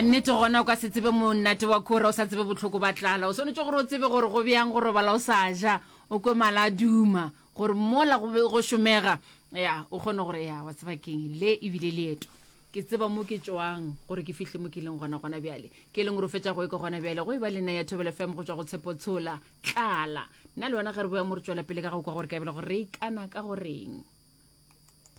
a nnete gona o ka se tsebe monate wa kora o sa tsebe botlhoko ba tlala o swanetse gore o tsebe gore go bjang go robala o sa ja o kwe mala a duma gore mola go be go šomega ya o kgone gore ya wa tseba keng le ebile leeto ke tseba mo ke tswang gore ke fihle mo ke leng gona gona bjale ke leng gore o fetsa go e ke gona bjale go e ba le nna ya thobelo fm go tswa go tshepo tshola tlala nna le wena ge re boya mo re tswela pele ka go kwa gore ka ebele gore re ikana ka goreng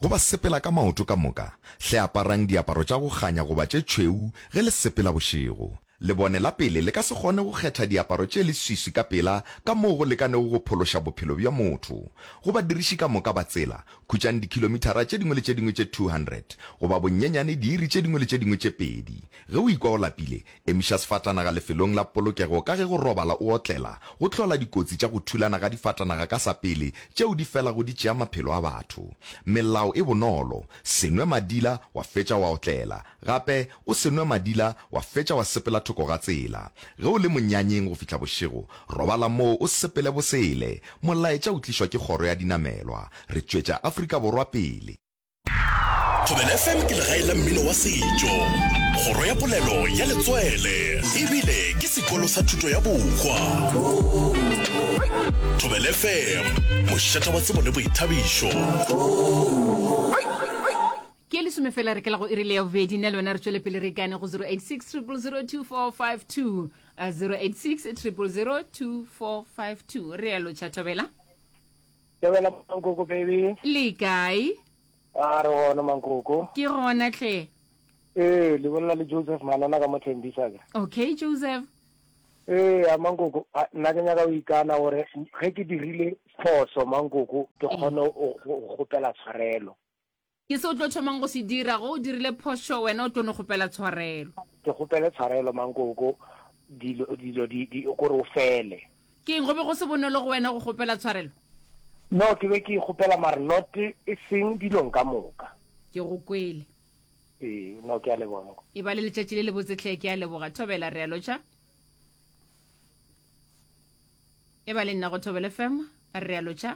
Go ba sepela ka maoto ka moka, hle aparang diaparo tša go kganya goba tše tšhweu ge le sepela bošego. Lebone la pele le ka se kgone go kgetha diaparo tše leswiswi ka pela ka moo go lekanego go phološa bophelo bja motho. Go badiriši ka moka ba tsela, khutšang dikhilomithara tše dingwe le tše dingwe tše 200, goba bonyenyane diiri tše dingwe le tše dingwe tše pedi. Ge o ikwa o lapile, Emiša sefatanaga lefelong la polokego ka ge go robala o otlela go hlola dikotsi tša go thulana ga difatanaga ka sa pele tšeo di felago di tšea maphelo a batho. Melao e bonolo, Se nwe madila wa fetša wa otlela. Gape, o se nwe madila wa fetša wa sepela thoko ga tsela. Ge o le monyanyeng go fihla bošego, robala moo o sepele bosele. Molaetša o tlišwa ke Kgoro ya Dinamelwa. Re tšwetša Afrika Borwa pele. Thobela FM ke legae la mmino wa setšo, kgoro ya polelo ya letswele ebile ke sekolo sa thuto ya bohwa. Thobela FM, mošata wa tsebo le boithabišo. ke e lesome fela re kela go irile ya bobedi nna le wena re tswele pele re ikane go 086 002452 086 002452 re yalo tšhathabela Tebela mankoko baby. Le kae? A re gona mankoko. Ke gona tle. Ee, le bolela le Joseph Manana ka mo Thembisa ka. Okay Joseph. Ee, a mankoko, a nna ke nyaka o ikana gore ge ke dirile phoso mankoko ke kgone go kgopela tshwarelo. Ke se o tlo thomang go se dira, ge o dirile phošo, wena o tlo no kgopela tshwarelo. Ke kgopele tshwarelo, mankoko, dilo, dilo di, di, ko re o fele. Ke'ng, go be go se bonolo go wena go kgopela tshwarelo? No, ke be ke e kgopela, mare not e seng dilong ka moka. Ke go kwele. Ee, no, ke a leboga, mankoko. E ba le letšatši le lebotse hle, ke a leboga. Thobela, re a lotšha. E ba le nna go Thobela FM, re a lotšha.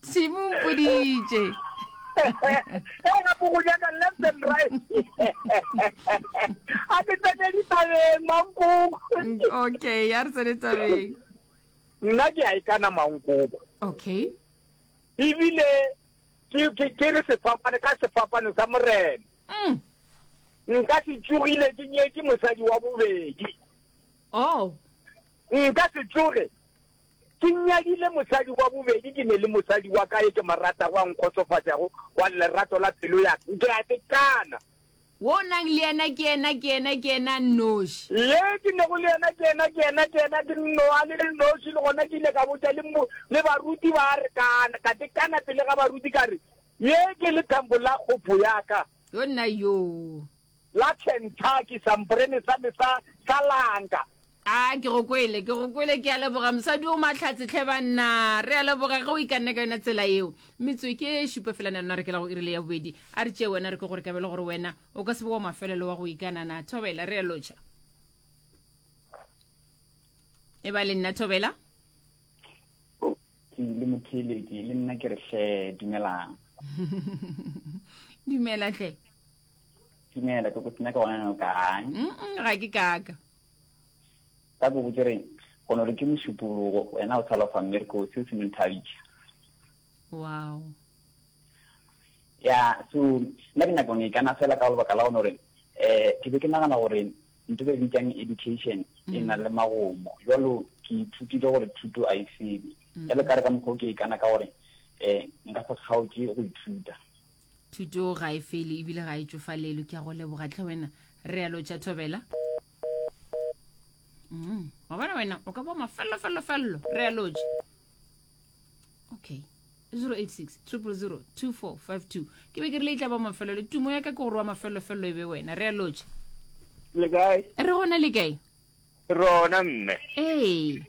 tshimo mpoditše Hey, gape go nyaka left and right. A ke tsene dithabeng, Mankoko. okay ya re tsene tabeng Nna ke a ikana Mankoko. okay Ebile ke ke ke re sefapane ka sefapano sa morena. mm. Nka se tsogile ke nyetse mosadi wa bobedi. oh Nka se tsoge Ke nyakile mosadi wa bobedi, ke ne le mosadi wa ka yo ke mo ratago a nkgotsofatšago wa lerato la pelo ya ka. Ke a tekana. Wo o nang le yena ke yena, ke yena, ke yena nnoši. Ye ke nego le yena ke yena, ke yena, ke yena, ke nnoa le le nnoši. Le gona ke ile ka botša le mo, le baruti ba re kana, ka tekana pele ga baruti ka re, Ye ke lethambo la kgopo ya ka. Yo nna yoo. la Kentucky, samporene sa me sa, sa lanka. A, ke go kwele, ke go kwele, ke a leboga, mosadi o mahlatse, tlhe banna, re a leboga ge o ikanne ka yona tsela yeo. Metswe ke e šupa fela, na lona re kela go irile ya bobedi, a re tšee wena, re ke gore ka bele gore wena o ka se be wa mafelelo wa go ikanana. Thobela, re a lotšha. E ba le nna, Thobela. Ke le motheleki, le nna ke re hle, dumelang. Dumela hle. Tumela, ke go sena ka gona no kang? Mm-mm, ga ke kaka. Ka go botse reng? Go no re ke mošupologo, wena o tshalofa mme re ko seo se menthabisa. Wow. Ya, so nna ke nyakong e kana fela ka lebaka la gone gore eh ke be ke nagana gore ntho be bitsang education e na le magomo. Jalo ke ithutile gore thuto a e sebe. Jalo ka re ka mokgwa o ke e kana ka gore eh nka se kgaotše go ithuta. thuto ga e fele ebile ga e tšofalelo ke a go leboga tle wena re alo tša thobela mm, wa bona wena o ka bo mafellofellofello re alotše okay 086 000 2452 ke be ke rile e tla ba mafelelo tumo ya ka ke gore wa mafellofello e be wena re alotše le kae re gona le kae rona mme ee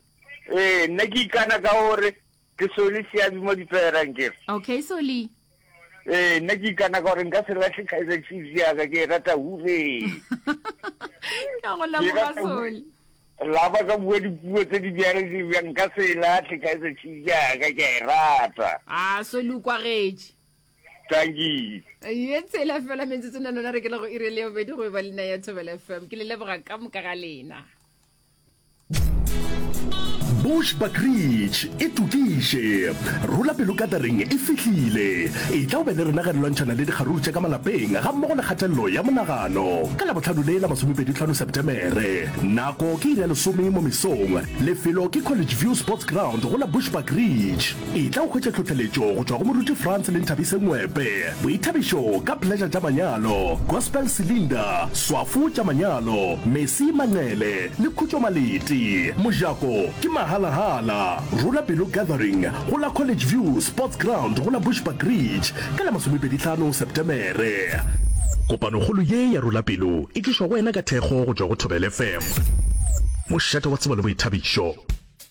ee nna ke ikana ka gore Ke Soli Seabi mo Dipherang ke re. Okay Soli. Ee, nna ke ikana ka gore nka se latlhe Kaizer Chiefs yaka ke e rata hure. Ke a go leboga Soli. La ba ka bua dipuo tse di bjang di bjang nka se e latlhe Kaizer Chiefs yaka ke a e rata. Ah, Soli o kwagetše. Tanki. Ye tsela fela metsotso na lona re ke le go irele yo bedi go e ba lena ya Thobela FM. Ke le leboga ka moka ga lena. Bushbuck Ridge e tokiše. Rula pelo Gathering e fihlile. Etla o be le rena ge re lwantšhana le dikgaruru tša ka malapeng ga mmogo le kgatelelo ya monagano. Ka Labohlano le la masomepedi tlhano Sepetemere. Nako ke iri ya lesome mo mesong. Lefelo ke College View Sports Ground go la Bushbuck Ridge. Etla o hwetše tlhohleletšo go tšwa go Moruti Frans le Nthabise Ngwepe, Boithabišo ka Pleasure tša manyalo, Gospel Cylinder, Swafo tša manyalo, Mesi Manqele le Khutšo Maleti. Mojako ke mahalahala. Rula Pelo Gathering go la College View Sports Ground go la Bushbuckridge ka la masomepedi tlhano Septemere. Kopanokgolo ye ya Rula Pelo e tlišwa go wena ka thekgo go tšwa go Thobela FM, mošate wa tsebo le boithabišo.